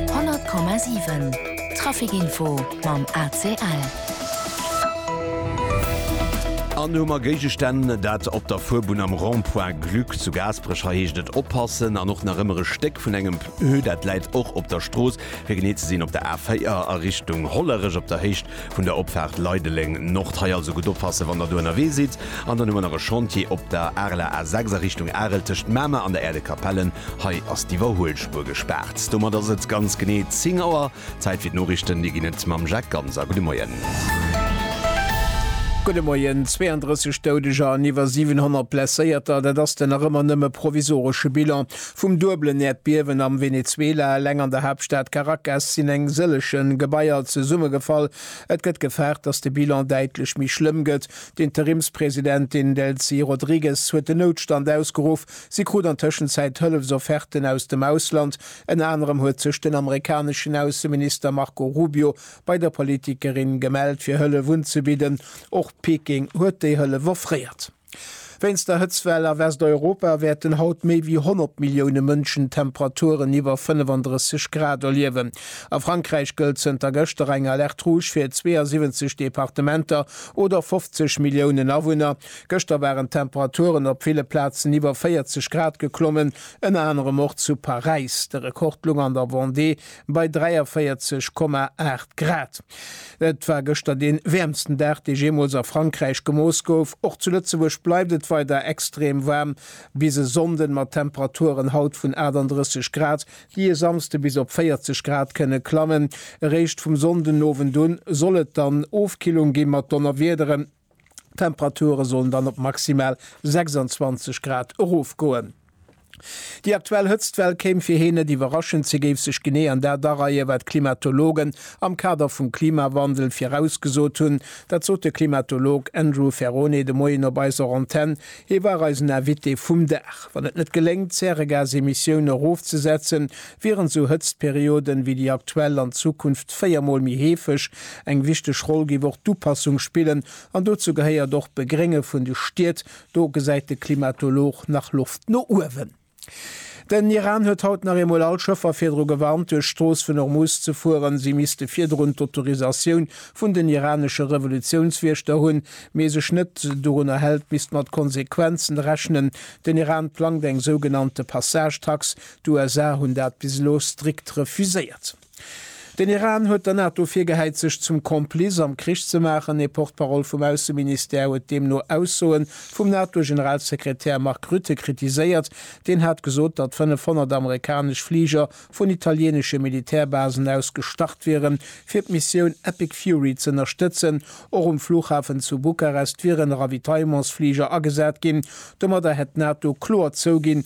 100,7 Trafic-Info mam ACL. An hu mer Géigestänn, dat op der Fuerbunn am Rond-point Gluck zu Gaasperech. Hei heescht et oppassen. An och nach ëmmer e Stéck vun engem Pneu, dat läit och op der Strooss, fir genee ze sinn op der A4 a Richtung Hollerech op der Héicht Vun der Opfaart Leideleng, Nord, hei also gutt oppassen, wann der do ënnerwee sidd. An dann hu mer nach e Chantier op der Areler A6 a Richtung Arel tëscht Mamer an der Aire de Capellen. Hei ass d'Iwwerhuelspuer gespaart. Domat ass et ganz genee 10 Auer. Zäit fir d'Noriichten. Déi ginn et mam Jacques Ganser. Gudde Moien. Gudde Moien. 32 Doudeger an iwwer 700 Blesséierter, dat ass den nach ëmmer nëmme provisoresche Bilan. Vum duebelen Äerdbiewen am Venezuela, eleng an der Haaptstad Caracas sinn eng sëlleche Gebaier zesummegefall. Et gëtt gefaart, datt de Bilan däitlech méi schlëmm gëtt. D'Interimspresidentin Delcy Rodrigues huet den Noutstand ausgeruff. Si krut an Tëschenzäit Hëllefsofferten aus dem Ausland. Ënner anerem huet sech den amerikaneschen Ausseminister Marco Rubio bei der Politikerin gemellt, fir Hëllef unzebidden. Och Peking huet déi Hëllef offréiert. Wéinst der Hëtzwell a Westeuropa wäerten haut méi wéi 100 Millioune Mënschen Temperaturen iwwer 35 Grad erliewen. A Frankräich gëllt zënter gëschter eng Alerte rouge fir 72 Departementer oder 50 Milliounen Awunner. Gëschter waren d'Temperaturen op ville Plazen iwwer 40 Grad geklommen, ënner anerem och zu Paräis. De Rekord loung an der Vendée, bei 43,8 Grad. Et war gëschter dee wäermsten Dag, dee jeemools a Frankräich gemooss gouf. Och zu Lëtzebuerg bleift et weider extrem waarm bis e Sonnden, mat Temperaturen haut vun 38 Grad, déi e Samsde bis op 40 Grad kënne klammen. Eréischt vum Sonndenowend un soll et dann Ofkillung gi mat Donnerwiederen. D'Temperature sollen dann op maximal 26 Grad erofgoen. Déi aktuell Hëtztwell kéim fir heen net iwwerraschend. Si géif sech genee an dat areie wat d'Klimatologen am Kader vum Klimawandel virausgesot hunn. Dat sot de Klimatolog Andrew Ferrone de Moien op eiser Antenn. Hie war eisen Invité vum Dag. Wann et net geléngt d'Zäregasemissioune erofzesetzen, Wärend sou Hëtztperioden wéi déi aktuell an Zukunft 4 mol méi heefeg, eng wichteg Roll géif och d'Upassung spillen an dozou gehéiert och d'Begrénge vun de Stied. Do gesäit de Klimatolog nach Loft no uewen. Den Iran huet haut nach eemol all Schëffer virdru gewarnt duerch d'Strooss vun Hormuz ze fueren. Si misste virdrun d'Autorisatioun vun den iranesche Revolutiounswiechter hunn. Mee sech net dorunner hält, misst mat Konsequenzen rechnen. Den Iran plangt eng sougenannte Passage-Tax D'USA hunn dat bis elo strikt refuséiert. Den Iran huet der NATO virgehäit, sech zum Complice am Krich ze maachen. Ee Porte-parole vum Ausseministère huet deemno Aussoe vum NATO-Generalsekretär Mark Rutte kritiséiert. Deen hat gesot, datt 500 amerikanesch Fliger vun italieenesche Militärbasen aus gestart wieren, fir d'Missioun Epic Fury z'ënnerstëtzen. Och um Flughafen zu Bukarest wieren Ravitaillements-Fliger agesat ginn. Domadder hätt d'NATO kloer zouginn,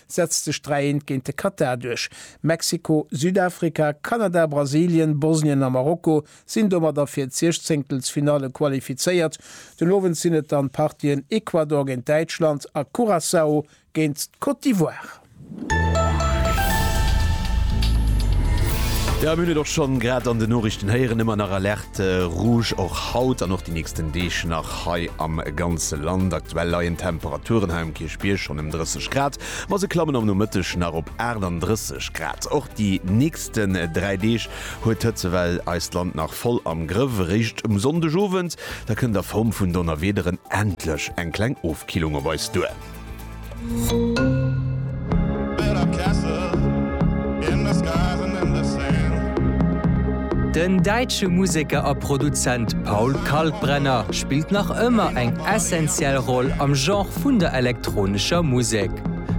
setzt sech 3 eent géint de Katar duerch. Mexiko, Südafrika, Kanada, Brasilien, Bosnien a Marokko sinn domadder fir d'Siechzéngtelsfinalle qualifizéiert. Den Owend sinn et dann d'Partien Ecuador géint Däitschland a Curaçao géint d'Côte d'Ivoire. Jo mir hunn et och schonn grad an den Noriichten héieren, ëmmer nach Alerte. De Rouge och haut an och déi nächsten Deeg nach hei am ganze Land. Aktuell leien d'Temperaturen hei um Kierchbierg schonn ëm 30 Grad, ma se klammen am Nomëtteg nach op 38 Grad. Och déi nächsten 3 Deeg huet d'Hëtzewell eist Land nach voll am Grëff. Eréischt um Sonndegowend, da kënnt a Form vun Donnerwiederen endlech eng kleng Ofkillung op eis duer. Den däitsche Museker a Produzent Paul Kalkbrenner spillt nach ëmmer eng essentiell Roll am Genre vun der elektronescher Musek.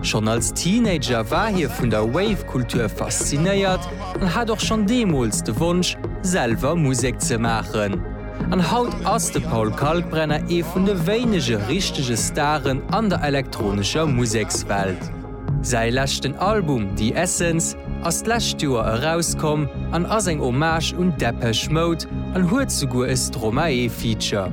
Schonn als Teenager war hie vun der Wave-Kultur faszinéiert an hat och schonn deemools de Wonsch, selwer Musek ze maachen. An haut ass de Paul Kalkbrenner ee vun de wéinege richtege Staren an der elektronescher Musekswelt. Säi leschten Album The Essence ass d'lescht Joer erauskomm an ass eng Hommage un Depeche Mode an huet souguer e Stromae-Feature.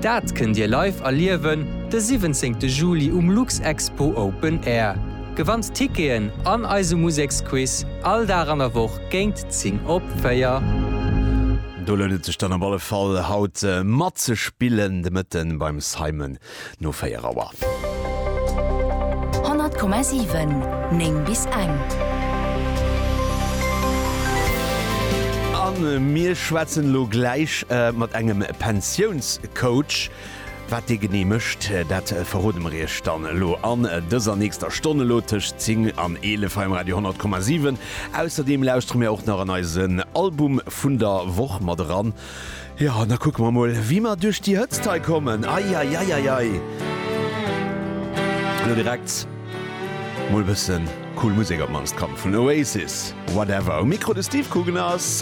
Dat kënnt Dir live erliewen de 17 Juli um Luxexpo Open Air. Gewannt Ticketen an eise Museksquiz all Dag an der Woch géint Zing op véier. Do lount et sech dann op alle Fall haut matzespillen de Mëtten beim Simon no 4 Auer. 100,7 9 bis eng. An mir schwätzen elo gläich mat engem Pensiounscoach. Wat dee genee mécht, dat verrode mer iech dann elo an dëser nächster Stonn, elo tëscht 10 an 11 hei um Radio 100,7. Ausserdeem lauschtere mir och nach an eisen Album vun der Woch mat eran. Jo, an da kucke mer emol, wéi mer duerch déi Hëtzt hei kommen. Eieieiei! Elo direkt mol e bësse cool Musek, op d'mannst komm vun Oasis, Whatever. Um Mikro de Steve Coogan a.